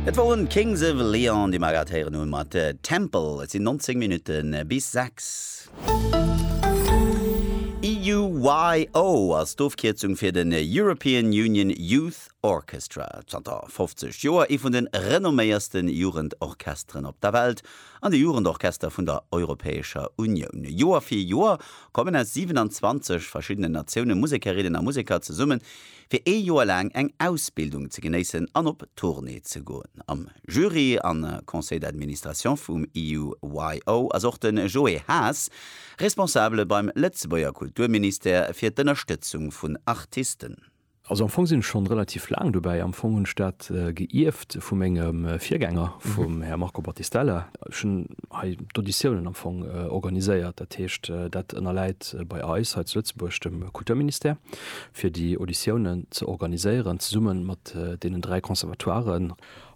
Et woren d'Kings of Leon déi mer grad héieren hun mat Temple. Et sin 19 Minuten bis 6. EUYO ass d'Ofkierzung fir den European Union Youth Orchestra. Zanter 50 Joer ee vun de renomméiersten Jugendorchesteren op der Welt an de Jugendorchester vun der Europäescher Unioun. Joer fir Joer kommen aus 27 verschiddenen Natioune Musekerinnen a Museker zesummen, fir ee Joer laang eng Ausbildung ze genéissen an op Tournée ze goen. Am Jury a Conseil d'Administration vum EUYO ass och de Joé Haas, Responsabele beim Lëtzebuerger Kulturministère fir d'Ënnerstëtzung vun Artisten. Also am Fong sinn ech schonn relativ laang dobäi. Am Fong hunn ech dat geierft vu mengem Virgänger, vum Här Marco Battistella. Ech hunn hei d'Auditiounen am Fong organiséiert. Dat heescht, dat ënnerläit bei eis hei zu Lëtzebuerg dem Kulturministère. fir déi Auditiounen ze organiséieren, zesumme mat deenen dräi Conservatoiren.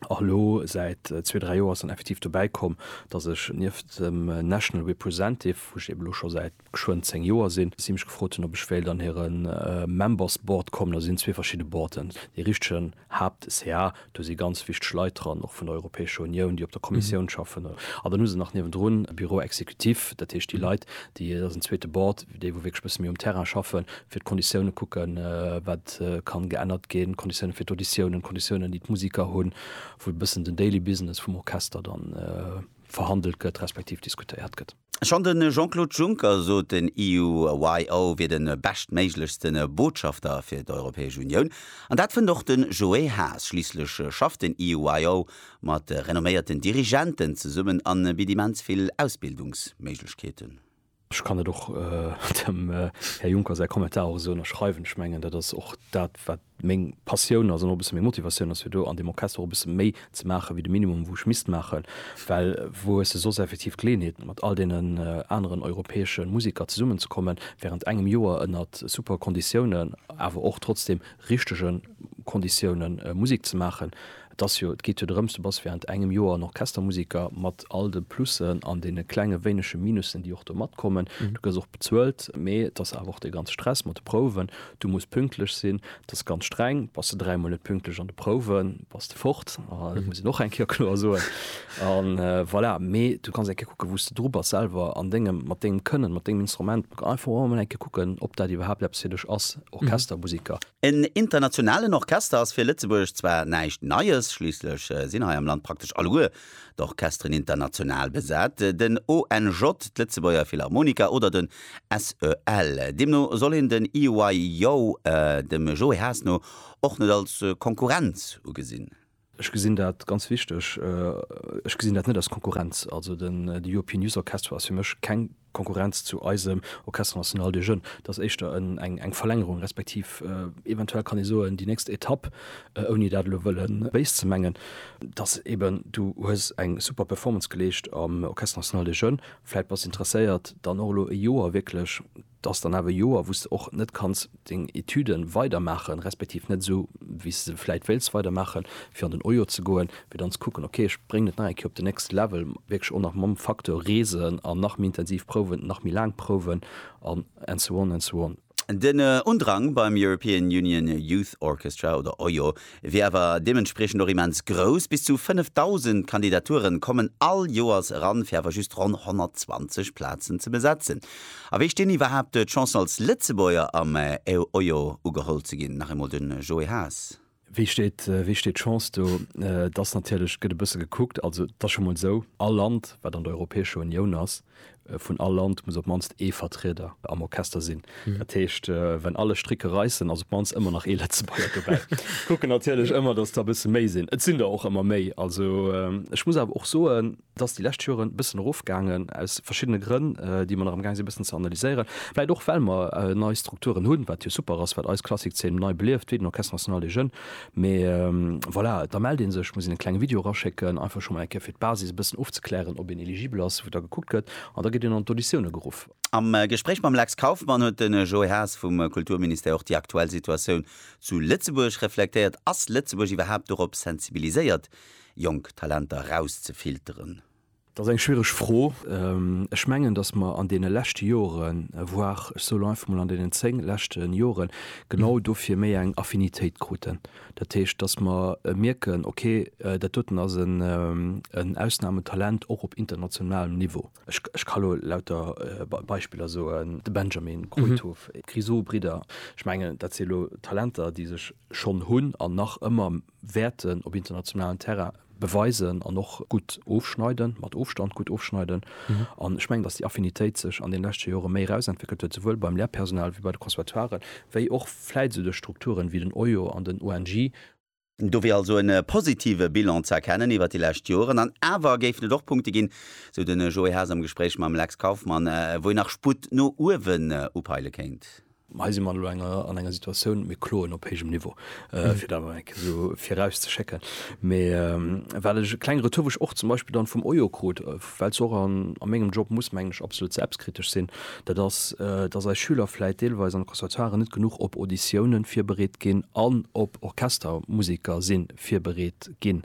A elo säit zwee, dräi Joer ass dann effektiv dobäi komm, datt ech nieft dem National Representive, wou ech eeben elo scho säit geschwënn zéng Joer sinn, si mech gefrot hunn, ob ech wéilt an hiren Members Board kommen. Also sinn zwee verschidde Boarden, dee richtegen Haapt ca. Do si ganz wichteg Leit dran, och vun der Europäescher Unioun, déi op der Kommissioun schaffen. An dann hu se nach niewendrun e Bureau exécutif, dat heescht déi Leit, déi, dat ass en zweete Bord, déi wou wierklech e bësse méi um Terrain schaffen, fir d'Konditioune kucken, wat ka geännert ginn, d'Konditiounen fir d'Auditiounen, d'Konditiounen, déi d'Musiker hunn, wou e bëssen den daily business vum Orchester dann verhandelt gëtt, respektiv diskutéiert gëtt. Schonn de Jean-Claude Juncker sot, den EUYO wier de beschtméiglechste Botschafter fir d'Europäesch Unioun. An dat fënnt och de Joé Haas. Schliisslech schafft den EUYO mat renomméierten Dirigenten zesummen a bitt immens vill Ausbildungsméiglechkeeten. Ech kann dat och dem Här Juncker säi Kommentar och esou ënnerschreiwen. Ech mengen, dat ass och dat, wat meng Passioun ass an och e bësse meng Motivatioun ass fir do an deem Orchester och e bësse méi ze maache wéi de Minimum wou ech misst maachen, well wou hues de soss effektiv d'Geleeënheet mat all deenen aneren europäesche Museker zesummen ze kommen wärend engem Joer ënner super Konditiounen, awer och trotzdem richtege Konditioune Musek ze maachen. Et ass jo, et geet jo drëms, du bass während engem Joer en Orchestermusiker, mat all de Plussen an deene klenge wéinege Minussen, déi och do matkommen. Du gëss och bezuelt, mee et ass awer och dee ganze Stress mat de Prouwen, du muss pünktlech sinn, et ass ganz streng. Bass de dräimol net pünktlech an de Prouwen, bass de fort, dat muss een och eng Kéier kloer soen. A voilà, mee du kanns eng Kéier kucken, wou s de dru bass selwer an dengem, mat dengem Kënnen, mat dengem Instrument. Einfach och emol eng Kéier kucken, ob dat iwwerhaapt eppes fir dech ass. Orchestermusiker. En internationalen Orchester ass fir Lëtzebuerg zwar näischt Neies, schliisslech sinn hei am Land praktesch alleguer d'Orchesteren international besat, den ONJ, d'Lëtzebuerger Philharmoniker oder den SEL. Deemno soll een den EYO dem Joe Haas no och net als Konkurrenz ugesinn. Ech gesinn dat ganz wichteg. Ech gesinn dat net als Konkurrenz. Also den European Youth Orchestra ass fir mech keng Konkurrenz zu eisem Orchestre national des jeunes. Dat ass éischter eng Verlängerung, respektiv eventuell kann ee soen, déi nächst Etapp, ouni dat elo wëlle béis ze mengen, dass eben du hues eng super Performance geleescht am Orchestre national des jeunes, vläit bass interesséiert dann och elo e Joer wierklech Et ass dann awer e Joer, wou s de och net kanns deng Etüde weidermaachen, respektiv net esou, wéi s de se vläicht wéilts weidermaachen, fir an den OJO ze goen, fir dann ze kucken, ok, ech bréngen et nach eng Kéier op den nächste Level, wierklech och nach mam Facteur reesen an nach méi intensiv prouwen, nach méi laang prouwen an and so on and so on. Den Undrang beim European Union Youth Orchestra, oder OJO, wier awer deementspriechend och immens grouss, bis zu 5.000 Kandidaturen kommen all Joers eran, fir awer just ronn 120 Plazen ze besetzen. A wéi stinn iwwerhaapt d'Chancen als Lëtzebuerger am EUYO ugeholl ze ginn? Nach eemol de Joé Haas. Wéi steet wéi steet d'Chance do? Et ass natierlech, gëtt e bësse gekuckt, also et ass scho mol esou, all Land wat an der Europäescher Unioun ass, Vun all Land muss op d'mannst ee Vertrieder am Orchester sinn. Dat heescht, wenn alle Stricke reissen, ass op d'mannst ëmmer nach ee Lëtzebuerger dobäi. Kucken natierlech ëmmer, dass der e bësse méi sinn. Et sinn der och ëmmer méi. Also ech muss awer och soen, et ass déi lescht Joren e bëssen erofgaangen, aus verschiddene Grënn, déi mer nach amgaang sinn e bëssen ze analyséieren. Vläicht och well mer nei Strukturen hunn, wat jo super ass, wat eis Klassikszeen nei belieft, wéi den Orchestre National des Jeunes, Mee voilà, da mellt ee sech, muss een e klenge Video eraschécken, einfach scho mol eng Kéier fir d'Basis e bëssen ofzeklären, ob een eligibel ass, wou da gekuckt gëtt an da gëtt een an d'Auditioune geruff. Am Gespréich mam Lex Kauffmann huet de Joé Haas vum Kulturministère och déi aktuell Situatioun zu Lëtzebuerg reflektéiert. Ass Lëtzebuerg iwwerhaapt dorop sensibiliséiert, jonk Talenter rauszefilteren? Dat ass eng schwiereg Fro. Ech mengen, datt mer an deene leschte Joren, voire ech sou lo einfach mol an deenen zéng leschte Jore genau dofir méi eng Affinitéit kruten. Dat heescht, datt mer mierken, okay, dat doten ass en Ausnahmetalent och op internationalem Niveau. Ech ka lo lauter Beispiller soen, de Benjamin, Kruithof, d'Grisou-Bridder. Ech mengen, dat si lo Talenter, déi sech schonn hunn an nach ëmmer wäerten op internationalen Terrain beweisen an och gutt ofschneiden, mat Ofstand gutt ofschneiden. An ech mengen, datt déi Affinitéit sech an deene leschte Jore méi erausentwéckelt huet, souwuel beim Lehrpersonal ewéi bei de Conservatoiren, wéi och vläit esou duerch Strukturen ewéi den OIO an den ONJ. Do wier also e positive Bilan ze erkennen iwwert déi lescht Joren. An awer géifen et och Punkte ginn, sou de Joé Haas am Gespréich mam Lex Kauffmann, wou een nach Sputt no uewen upeile kéint. Mä hei si mer elo an enger Situatioun, mir kloen op héijem Niveau, fir dat emol eng Kéier esou virauszeschécken. Mee well ech e klenge Retour, wou ech och zum Beispill dann vum Oyo krut, well se och a mengem Job muss, mengen ech, absolut selbstkritesch sinn, dat ass, dass eis Schüler vläit deelweis an de Conservatoiren net genuch op Auditiounen virbereet ginn an op Orchestermusiker si virbereet ginn.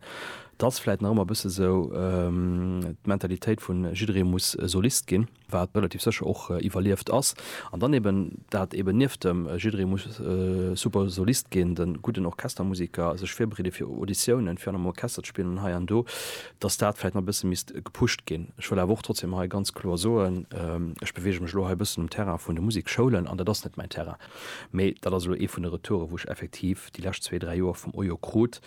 Et ass vläit nach ëmmer e bësse esou d'Mentalitéit vun jidderee muss Solist ginn. wat relativ sécher och iwwerlieft ass, an dann eben dat eben nieft dem jidderee muss super Solist ginn, de gudden Orchestermusiker, sech virbereede fir Auditiounen, fir an engem Orchester ze spillen an hei an do, datt dat vläicht nach e bësse misst gepusht ginn. Ech wëll awer och trotzdeem hei ganz kloer soen, ech beweege mech elo hei e bëssen um Terrain vun de Musikschoulen, an dat ass net mäin Terrain, mee dat ass elo ee vun de Retouren, wou ech effektiv déi lescht zwee, dräi Joer vum OIO krut,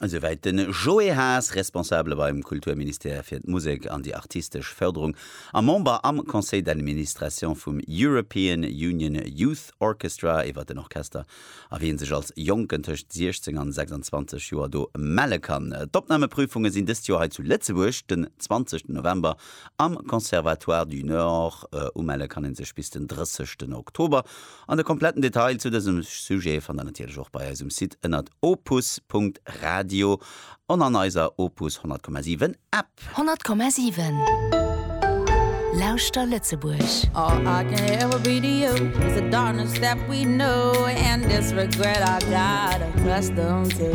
Esouwäit de Joé Haas, Responsabele beim Kulturministère fir d'Musek an déi artistesch Fërderung a Member am Conseil d'administration vum European Union Youth Orchestra, iwwer den Orchester a wien sech als Jonken tëscht 16 an 26 Joer do melle kann. D'Opnameprüfunge sinn dëst Joer hei zu Lëtzebuerg den 20 November am Conservatoire du Nord. Umelle kann ee sech bis den 30 Oktober. An de kompletten Detail zu dësem Sujet fannt der natierlech och bei eisem Site ënnert opus.radio an an eiser Opus 100,7 App. 100,7 Lauschter Lëtzebuerg! All I can ever be to you is the darkness that we know and this regret I got accustomed to.